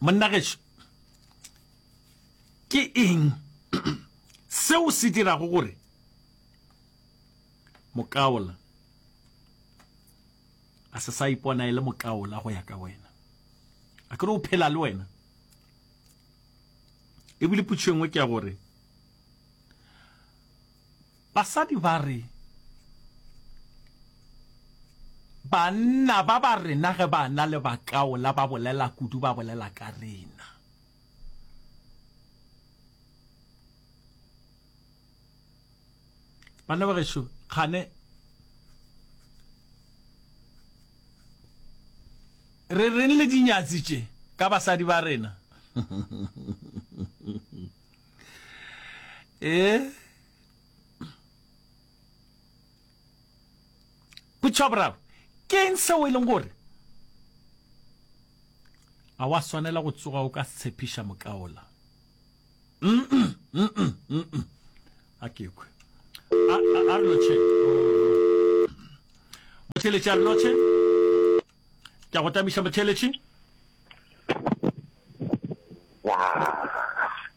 monna gešo ke eng seo se dirago gore mokaola a se sa ipona e le mokaola go ya ka wena a kere o phela le wena ebile putšo engwe ke ya gore Basadi ba re, Banna ba ba rena ge ba na le bakaola ba bolela kudu ba bolela ka rena. Banna ba gešo, kgane re reng le dinyatsi tše ka basadi ba rena? Ee. potšo ya boraro ke eng seo e leng gore a wa swanela go tsoga o ka tshepiša mokaola a kekwe a re lotšhe motheletši a re lotšhe ke a go tamiša motheletši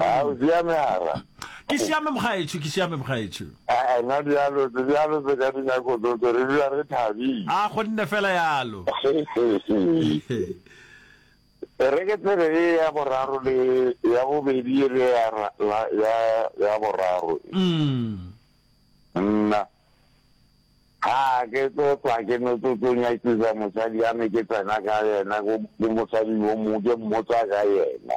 A o siame hara? Ke siame mokgaetšo, ke siame mokgaetšo. A na dialo tse dialo tse ka dinako tsohle re dula re thabile. A go nne fela yalo. E re ke tsebe e ya boraro le ya bobedi e le ya la ya ya boraro. Nna ha ke tlo tswa ke no tlo tlo nyakisa mosadi ya me ke tsena ka yena go mosadi yo mo ke mmotsa ka yena.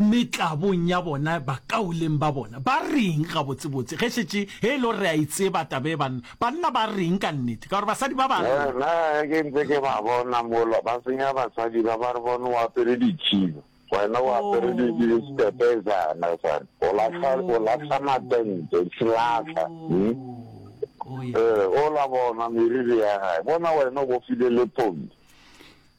metlabong ya bona bakauleng ba bona. Ba reng gabotsebotse ge šetše ge e le gore re a e tseba taba e banna? Banna ba reng ka nnete? Ka gore basadi ba ba reng? Nna ge ke ntse ke ba bona mola ba senya basadi ba ba re bone o apere dikhiba wena o apere diskepezana sane o lahla o lahla matente tshilahla ee o la bona meriri ya gae bona wena o bofile le pongi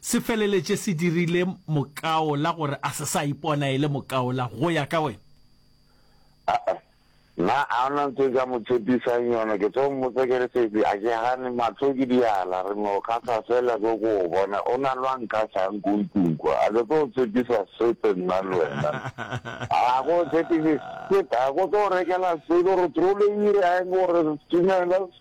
se feleletše se dirile mokaola gore a se sa ipona e le mokaola go ya ka wena? Aa, nna a ona ntho e ka mo tshepisang yona, ke tlo mmotsa ke re, Sesi, a ke gane, mahlo ke diala, re no kgahla fela ke go go bona, o na le wa nkgahlang ko ntlong kwa, a ke tlo go tshepisa sepe nna le wena, a go tshepise sepe, a ko tlo go rekela selo, re trole ire a eng gore Stumela,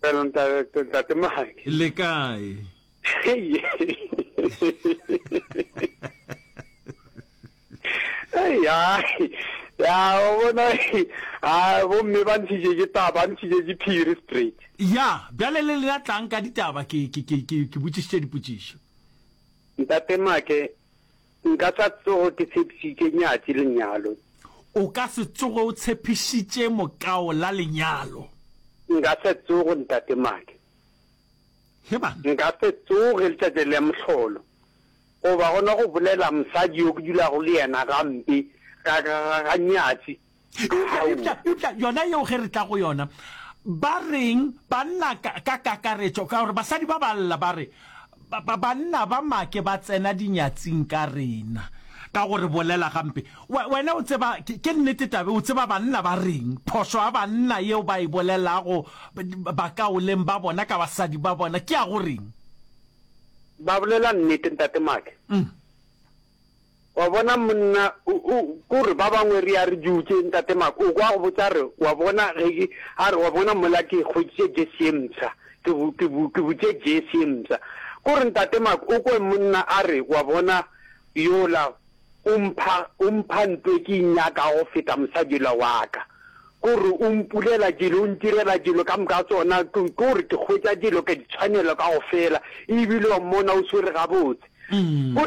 Pero ntate, ntate Mahadi. Le kae? Hey. Hey, ai. Ya, o bona, a, bomme ba ntshitše ke taba, ba ntshitše ke phiri straight. Ya, bjale le lena tlang ka ditaba, ke, ke, ke, ke, ke botšišitše dipotšišo. Ntate Make, Nka sa tsogo ke tshepišitše nyatši lenyalo. O ka se tsoge o tshepišitše mokao la lenyalo. Nka se tsoge ntate Madi. He bana. Nka se tsoge letšatši la mohlolo. Goba gona go bolela mosadi yo ke dulago le yena gampe ka, ka, ka, ka nyatši. eupša eupša eupša yona yeo ge re tla go yona ba reng banna ka ka kakaretšo ka gore basadi ba ba lla ba re ba- ba- banna ba make ba tsena dinyatsing ka rena ka gore bolela gampe We- wena o tseba ke ke nnete tabe o tseba banna ba reng phošo ya banna yeo ba e bolelago ba- bakaoleng ba bona ka basadi ba bona ke ya go reng ba bolela nnete ntate make Mm. Wa bona, monna, o, o, ke gore ba bangwe re ya re dutše, Ntate Mark, o kwa a go botša a re, Wa bona, ge ke, a re, Wa bona, mola ke hweditše jersey ye mpsha, ke bu, ke bu, ke butše jersey ye mpsha. Ke gore, Ntate Mark, o kwe monna a re, Wa bona, yola o mpha, o mpha nto e ke e nyakago go feta mosadi yola wa ka. Ke gore o mpulela dilo, o ntirela dilo ka moka tsona, ke, ke gore ke hwetša dilo ke ditshwanelo kaofela, ebile wa mmona o swere gabotse. Ke gore,